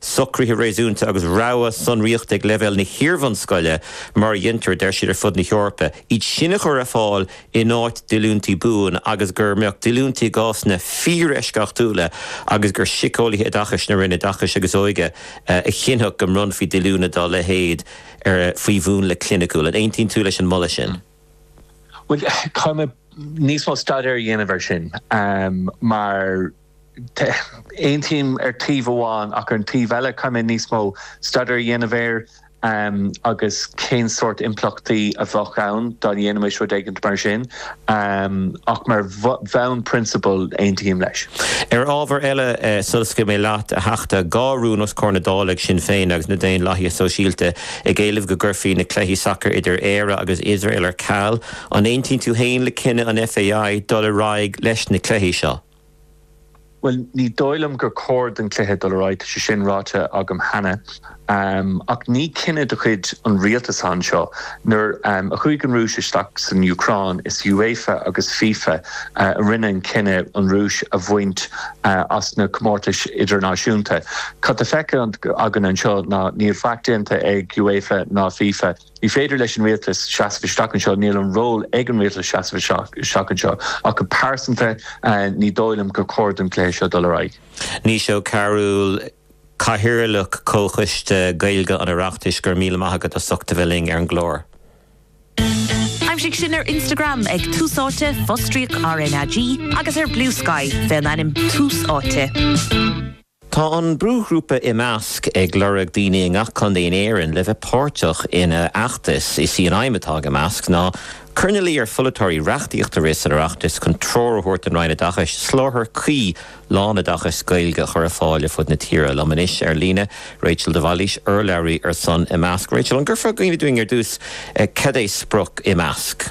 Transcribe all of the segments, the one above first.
socruithe réasúnta agus rogha sonraíochta ag leibhéal na hiarbhunscoile mar a dhéantar, a deir siad, ar fud na hEorpa, iad sin a chur ar fáil in áit díolúintí buan agus go mbeadh díolúintí i gcásanna fíoreisceachtúla agus gur síceolaithe oideachais na Roinne Oideachais agus Óige a chinnfeadh go mbronnfaí díolúine dá leithéid faoi mhúnla cliniciúil. An aontaíonn tú leis an moladh sin? Bhuel, caithfidh mé níos mó staidéir a dhéanamh air sin mar. aontaím ar taobh amháin ach ar an taobh eile caithfidh mé níos mó staidéir a dhéanamh air agus cén sórt impleachtaí a bheadh ann dá ndéanfaimis rud éigin mar sin ach mar bhonn prionsabail aontaím leis. Ar ábhar eile, sula scaoilfidh mé leat, a Theachta, dhá rún os comhair na Dála ag Sinn Féin agus na Daonlathaithe Sóisialta ag éileamh go gcuirfí na cluichí sacair idir Éire agus Iosrael ar ceal. An aontaíonn tú féin le cinneadh an FAI dul ar aghaidh leis na cluichí seo? Bhuel, ní dóigh liom gur chóir don chluiche dul ar aghaidh, tá sé sin ráite agam cheana. Ach ní cinneadh de chuid an rialtais anseo. Nuair a chuaigh an Rúis isteach san Úcráin, is UEFA agus fifa a rinne an cinneadh an Rúis a bhaint as na comórtais idirnáisiúnta. Cad tá feicthe againn anseo ná níl faic déanta ag UEFA ná fifa. Ní féidir leis an Rialtas seasamh isteach anseo, níl an ról ag an Rialtas seasamh isteach anseo ach go pearsanta ní dóigh liom gur chóir don gcluiche seo dul ar aghaidh. Naoise Ó Cearúil, Cathaoirleach Comhchoiste Gaeilge an Oireachtais, Go raibh míle maith agat as ucht a bheith linn ar an gclár. Aimsigh sinn ar Instagram ag Tús Áite, fostríoc RnaG, agus ar Bluesky, fén ainm Tús Áite. Tá an brúghrúpa Imeasc ag lorg daoine i ngach contae in Éirinn le bheith páirteach ina fheachtas. Is í an aidhm atá ag Imeasc ná cur ina luí ar pholaiteoirí reachtaíocht a rith san Oireachtas chun treoir a thabhairt don Roinn Oideachais soláthar cuí lánoideachais Gaeilge a chur ar fáil ar fud na tíre. Liom anois ar líne Rachel de Bhailís, urlabhraí ar son Imeasc. Rachel, an gcuirfeá in iúl dúinn ar dtús cad é sprioc Imeasc?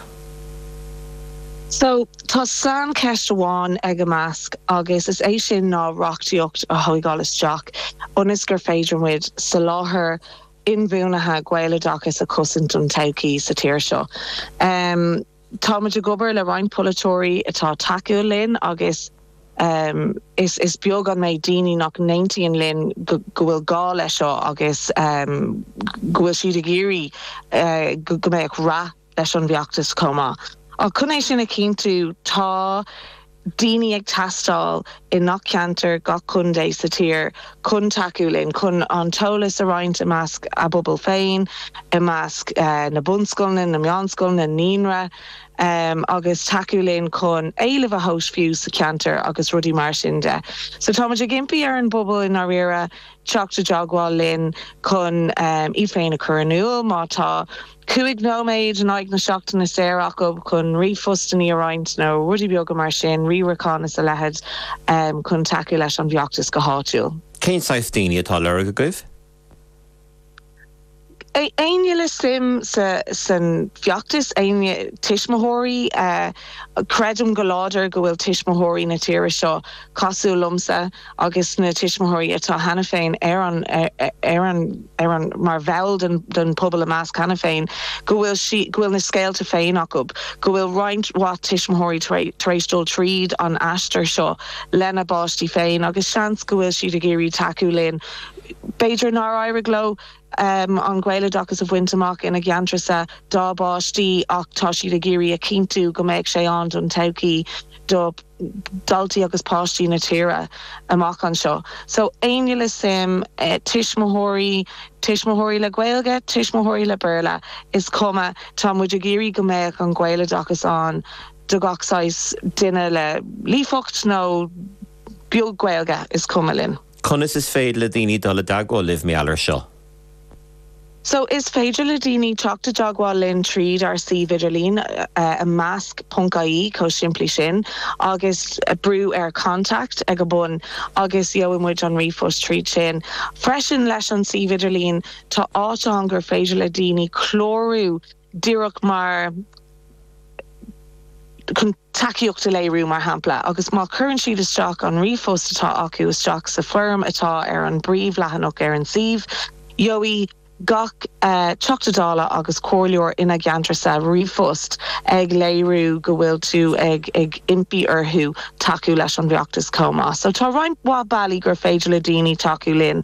So, tá saincheist amháin ag Imeasc agus is é sin ná reachtaíocht a thóigeáil isteach ionas gur féidir muid soláthar inbhuanaithe Gaeloideachais a chosaint don todhchaí sa tír seo. Tá muid ag obair le roinnt polaiteoirí atá tacúil linn agus is beag an méid daoine nach n-aontaíonn linn go bhfuil gá le seo agus go bhfuil siad ag iarraidh go mbeadh rath leis an bhfeachtas chomh maith. Ach chun é sin a chinntiú, tá daoine ag teastáil i ngach ceantar, gach contae sa tír chun tacú linn, chun an t-eolas a roinnt i measc a bpobal féin, i measc na bunscoileanna, na meánscoileanna, naíonra, agus tacú linn chun éileamh a thomhas fiú sa cheantar agus rudaí mar sin de. So tá muid ag impí ar an bpobal i ndáiríre teacht i dteagmháil linn chun iad féin a chur in iúl má tá, cúig nóiméad in aghaidh na seachtaine saor acu chun ríomhphostannaí a roinnt nó rudaí beaga mar sin, riarachán is a leithid, chun tacú leis an bhfeachtas go háitiúil. Cén saghas daoine atá a lorg agaibh? Éinne le suim sa bhfeachtas, éinne, tuismitheoirí, creidim go láidir go bhfuil tuismitheoirí na tíre seo cosúil liomsa agus na tuismitheoirí atá cheana féin ar an, ar an, ar an, mar bhall den, den phobal Imeasc cheana féin, go bhfuil sí, go bhfuil na scéalta féin acu, go bhfuil roinnt mhaith tuismitheoirí tar éis, tar éis dul tríd an aistear seo lena bpáistí féin agus seans go bhfuil siad ag iarraidh tacú linn, b'fhéidir nár éirigh leo. an Gaeloideachas a bhaint amach ina gceantarsa dá bpáistí ach tá siad ag iarraidh a chinntiú go mbeadh sé ann don todhchaí do dhaltaí agus páistí na tíre amach anseo. So éinne le suim, tuismitheoirí, tuismitheoirí le Gaeilge, tuismitheoirí le Béarla, is cuma, tá muid ag iarraidh go mbeadh an Gaeloideachas ann do gach saghas duine le líofacht nó. beag Gaeilge, is cuma linn. Conas is féidir le daoine dul i dteagmháil libh, mar gheall air seo? So is féidir le daoine teacht i dteagmháil linn tríd ár suíomh idirlín, Imeasc ponc ie, chomh simplí sin, agus brú ar Contact ag a bun agus gheobhaidh muid an ríomhphost tríd sin. Freisin, leis an suíomh idirlín, tá áit ann gur féidir le daoine clárú díreach mar chun. tacaíocht a léiriú, mar shampla, agus má chuireann siad isteach an ríomhphost atá acu isteach sa bhfoirm atá ar an bpríomhleathanach ar an suíomh, gheobhaidh gach Teachta Dála agus comhairleoir ina gceantarsa ríomhphost ag léiriú go bhfuil tú ag impí orthu tacú leis an bhfeachtas chomh maith. So tá roinnt mhaith bealaí gur féidir le daoine tacú linn.